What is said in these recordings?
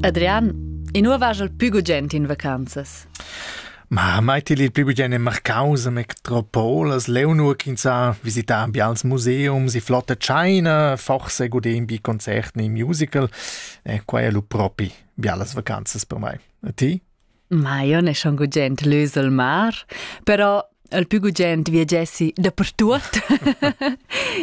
Adrian, in nu vaja'l pü gugent in vacanzas? Ma mai til il pü gugent in Marcaus a metropolas, leu nur ch'ins ha visità bials museums, i flotta China, forse godé in bi concert in musical, e quai è lu propi bialas vacanzas per mai. E ti? Maion è schon gugent lüs al mar, però il più gugent viegessi dapertut.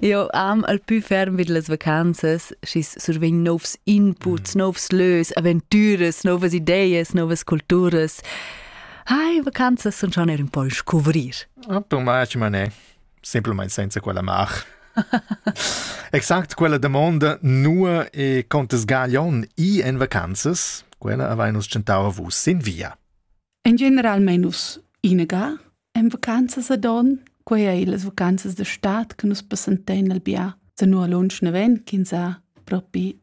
Io am al più ferm vid las vacanzas, schis survegn novs inputs, mm. novs lös, aventüras, novas ideas, novas culturas. Hai, vacanzas sun schon er un po scuvrir. Ah, tu mai, Mané. simplamain senza quella mar. exact quella damonda nua e contes gaglion i en vacanzas, quella avai nus tschentau vus sin via. En generalmein nus inaga en vacanzas a don, quei ei las vacanzas de stat che nus passentein al bia, se nu a lunsch neven, kin sa propi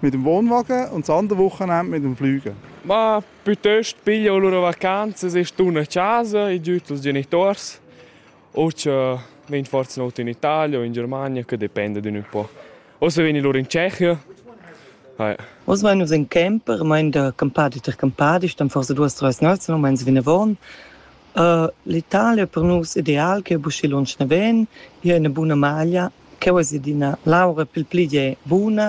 mit dem Wohnwagen und das andere Wochenende mit dem Flügen. Ma piuttosto piglio le loro vacanze, se stun a casa, i giuto als genitori o se ven forse not in Italia o in Germania, che dipende d'un po'. O se veni loro in Tschechia. Oz vai nus in camper, mein der Campadi ter Campadi, stam forse duas treis national, meins vinavon. Uh, L'Italia per nus ideal che buschi lunsch ne ven, hier eine buna maglia Cheu es ed ina laura pil pli gie buna.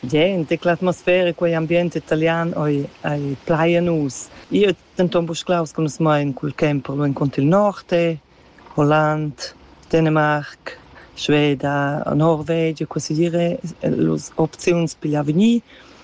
Gente, l'atmosfera, quei ambient italian ei, ei plai a nus. Io denton buca claus che nus mein cul camper lu encunter il Norte, Holland, Dänemark, Sveda, Norvegia, quasi dire, las opziuns pigl avegnir.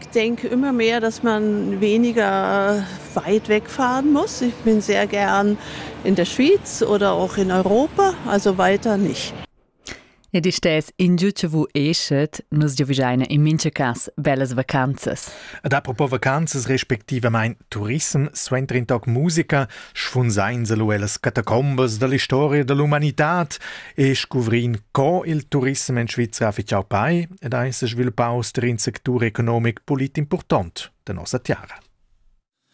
Ich denke immer mehr, dass man weniger weit wegfahren muss. Ich bin sehr gern in der Schweiz oder auch in Europa, also weiter nicht. Ed istess ingio che vu eschet, nus giovigiaina in mincha cas bellas vacanzas. Ad apropos vacanzas respectivament turism, suenter in toc musica, schfunsain se lu ellas catacombas dall'historia dall'umanitad e scuvrin co il turissem en Svizra ha fitschau pei ed ha ins svilupaus ter in sectur economic pulit impurtont de nossa tiara.